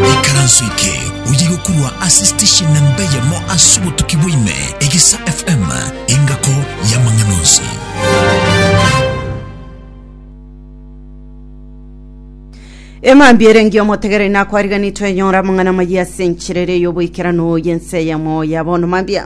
Ikaranso eke oyegokurwa ase station na mbeyemo ase obotuki bwaime, Egesa FM, engako y'amang'ana onsi. Emambia erengi omotegereri nakwariganiri twenyora amang'ana amayia ase enchera ere y'oboikeranu y'ense eyemo ya bono mambia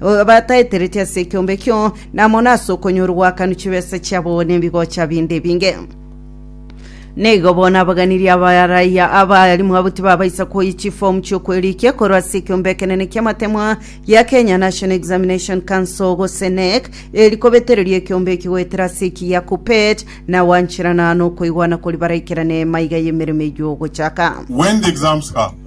bataetereti ase ekiombe ekio, na mono ase okonyora ogwakanwa chibesa chiabo nebigocha binde ebinge. Neigo bono abaganirie abaraiya abarimu abo tibabaisa koyia chifomu chiokwerikia korwa ase ekiombe ekenene ki'amatemwa gia Kenya National Examination Council gose NEC, eri kobetereria ekiombe eki goetera ase eki gia KUPPET, na gwancherana nokoigwana kori baraikerane emaiga y'emeremo eyio ogochaka. When the exams come,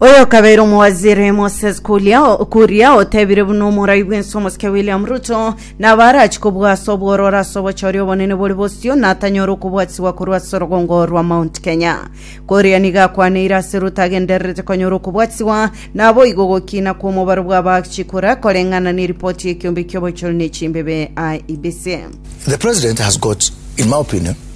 Oyo okabeire omowaziri Moses Kuria, Kuria otebire buna omorai bwense omosike William Ruto nabo arachi kobua ase obwororo ase obochori obonene bore bosio natanyore okobwatigwa korwa ase orogongo rwa Mount Kenya. Kuria nigo akwaneire ase Ruto agendererete konyora okobwatigwa naboigo ogokina kw'omobaro bw'abaachi kura koreng'ana neripoti y'ekiombe ki'obochori ne chimbebe IEBC. The president has got, in my opinion,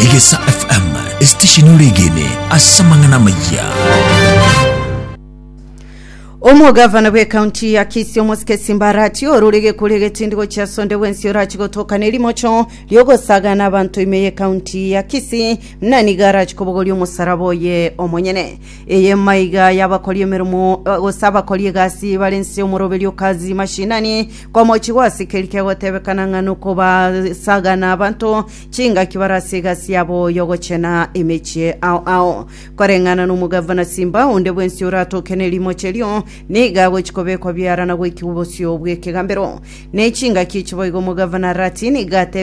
Egesa FM, esitesheni ore egene ase amang'ana amayia. omogavana bw'ekaunti ya kisii omosikesi mbarati ororege kore egetindigo chia sonde bwensi orachi gotoka nerimocho riogosaga na abanto ime y'ekaunti ya kisii muna niga arachi kobogoria omosaraba oye omonyene eye maiga y'abakori emeremo eh, gose abakori egasi bare nse omoroberio kazi mashinani Komochi gwasikeriri kegotebekana ng'a nokobasagana abanto chingaki bare ase egasi yabo y'ogochena emechie ao ao. Koreng'ana n'omogavana simba onde bwensi oratoke nerimochi erio, nigo agochia kobekwa biara na goikigwa bosio bw'ekegambero. Ne chingaki echi boigo omogavana Rati nigo atebire